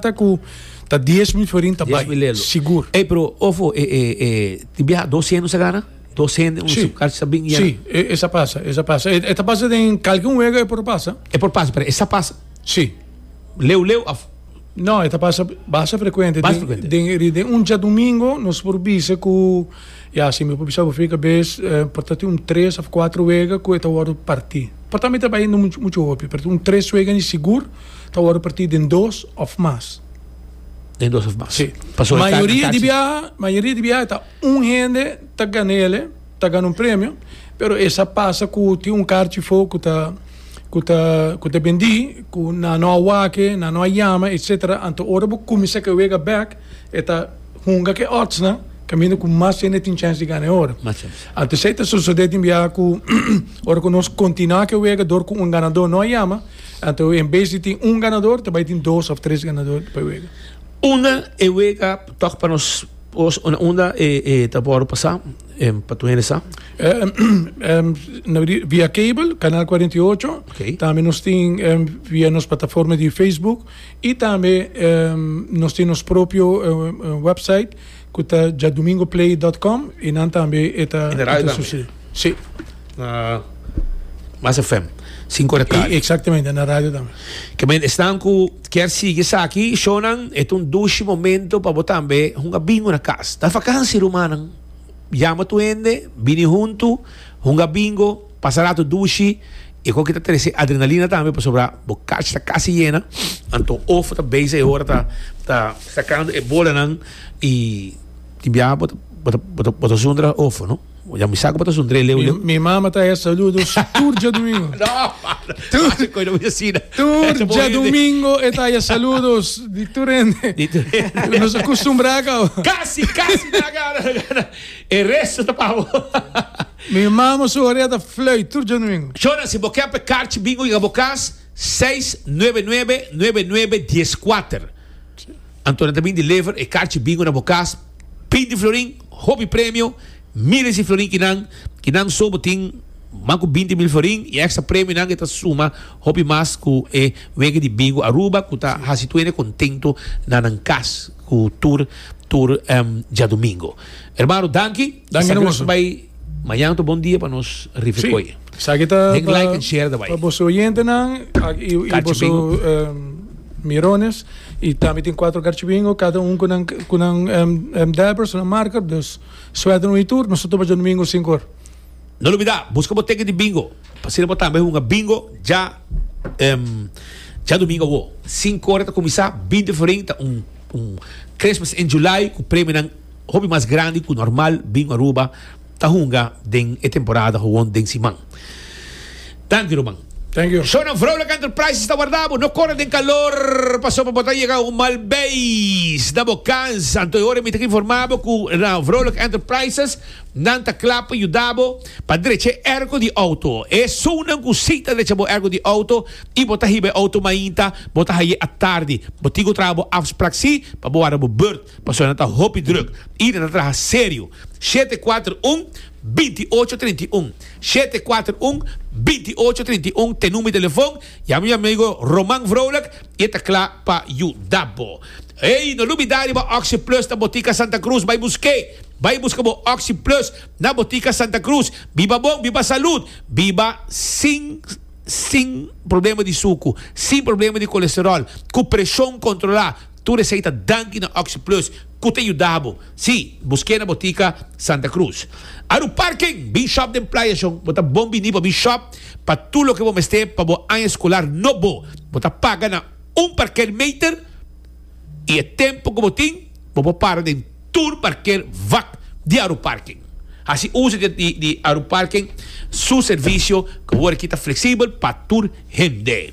ta ku ta dies mil florin ta bai sigur. Ey pero ofo e e e tin biaha dos hende sa gana? Dos hende un si. kar sa bin yena. Si e sa pasa e sa pasa e ta pasa den kalke un wega e por pasa. E por pasa pero e sa pasa? Si. Leu leu of? No e ta pasa basa frecuente basa frecuente den ri den un diadomingo nos por bisa ku ya si mi por bisa bo fri kabes por ta tin un tres of kuatro wega ku e ta worde parti por tambe ta bai no muchu hopi pero un tres wega di sigur. Ta wòrdu partí den dos òf mas. Den dos òf mas. Sí. Pasobra ta Mayoria di biaha, mayoria di biaha ta un hende ta gan'ele, ta gana un premio, pero e sa pasa ku tin un karchi for ku ta ku ta ku ta bendí, ku nan no a wak e, nan no a yama, etsetera. Anto ora bo kuminsá ke wega bèk, e ta hunga ke òdsnan kaminda ku mas hende tin chèns di gana e ora. Mas chèns. Anto esei ta sosodé tin biaha ku ora ku nos kontinuá ke wega dor ku un ganadó no a yama, Anto en bes di tin un ganador ta bai tin dos of tres ganador pa e wega. Unda e wega tok pa nos unda e ta por pasa pa tu hende sa? Via cable canal 48, okay. tambe nos tin via nos plataforma di Facebook y tambe nos tin nos propio website Cu ta djadomingoplay dot com y nan tambe e ta En de radio tambe? sucede. Sí. Na Mas FM. Cinco de Cali. Y exactamente, en la radio tambe. Que men, esnan cu kier sigui esaki, shownan, e ta un dushi momento pa bo tambe hunga bingo na cas. Ta fakansi, rumannan. Yama tur hende, bini huntu, hunga bingo. Pasa rato dushi, i e hoki ta trese adrenalina tambe pasobra bo kach ta kasi yena, anto of ta base e ora ta sakando e bolanan i tin biaha bo ta bo ta bo ta zundra of no, ya mi sa ku bo ta zundr'e leu leu. Mi mama ta hesha saludos tur djadumingo. Tur djadumingo e ta hesha saludos di tur hende. Nos a kustumbrá kau. Kasi kasi ta gana ta gana e resto ta pa bo. Mi mama su orea ta flui tur djonuingo. Shona, si bo ke pe karchi bingo yega bo kas, seis nuebe nuebe nuebe nuebe dies kuater. Anto nan ta bin deliver e karchi bingo na bo kas. Binti florin, hopi premio, miles di florin kinan ki nan so bo tin mas ku binti mil florin i ekstra premionan ke ta suma hopi mas ku e wega di bingo Aruba ku ta hasi tuende kontentu na nan kas ku tur tur djadumingo. Ermano danki. Dan Esa hermoso. Bai mañana to bon dia pa nos rife sí. koye. Saki ta Den pa, like and share da bai. Pa boso oyentenan y, y boso um, mirones y tambe tin cuatro garchibingo cada un kunan kunan um, um, dabber su marker dus suerte un y tur nos topa jo domingo cinco hora. No lo olvida, busca bo teken di bingo. Pasina bo tambe hunga bingo ja um, ja domingo wo. Cinco hora ta comisa, 20 febrero ta un un Christmas in July ku premio nan Hopi mas grandi ku normal bin Aruba ta hunga den e temporada gewoon den siman. Danki ruman. Thank you. So nan Vrolijk Enterprises ta warda bo. No kore den kalor paso pa bo ta yega un mal beis na bo kans. Anto e ora mi ta informa bo ku na Vrolijk Enterprises nan ta kla pa yuda bo pa drecha e erko di outo. Esounan ku si ta drecha bo erko di outo i bo ta hiba e outo mainta bo ta haye a tardi, bo tin ku traha bo afsprak si pa bo warda bo beurt. Pasobra nan ta hopi drùk i nan ta traha serio. Shete kuater un, binti ocho trinta i un, shete kuater un, binti ocho trinta i un t'e number di telefon. Yama mi amigo Roman Vrolijk i e ta kla pa yuda bo. Ey, no lubidá riba Oxi Plus na Botica Santa Cruz. Bai busk'é! Bai buska bo Oxi Plus na Botica Santa Cruz. Biba bon, biba salud, biba sin, sin problema di suku, sin problema di kolesteròl, ku preshon kontrolá. Tur esei ta danki na OxyPlus cu ta yuda bo. Sí, busqu'e na bo tica Santa Cruz. Aruparking! Bin shop den Playa Shon. Bo ta bon bini pa bin shop pa tur loke bo mester pa bo aña escolar nobo. Bo ta paga na un parkeermeter y e tempo cu bo tin bo por para den. tur parker wak di Aeroparken. Hasi uso di Aeroparken su servisio ku awor aki ta fleksibel pa tur hende.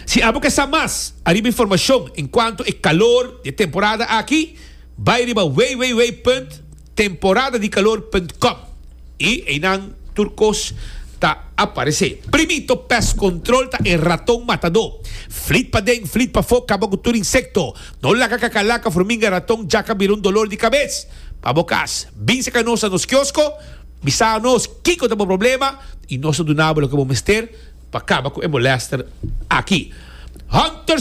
Si abo ke sa mas ariba informashon enkuanto e kalor di e temporada aki, bai riba www. Temporada di Calor punt com y einan tur cos ta aparece. Primito Pest Control ta e raton matador. Flit paden, flit pafo, caba cu tur insecto. No laga cacalaca, furminga, raton, jaca bira un dolor di cabez pa bo cas. Bin seca nos na nos kiosco, bisa nos kico ta bo problema y nos ta duna bo loke bo mester pa caba cu e molester aki. Hunter.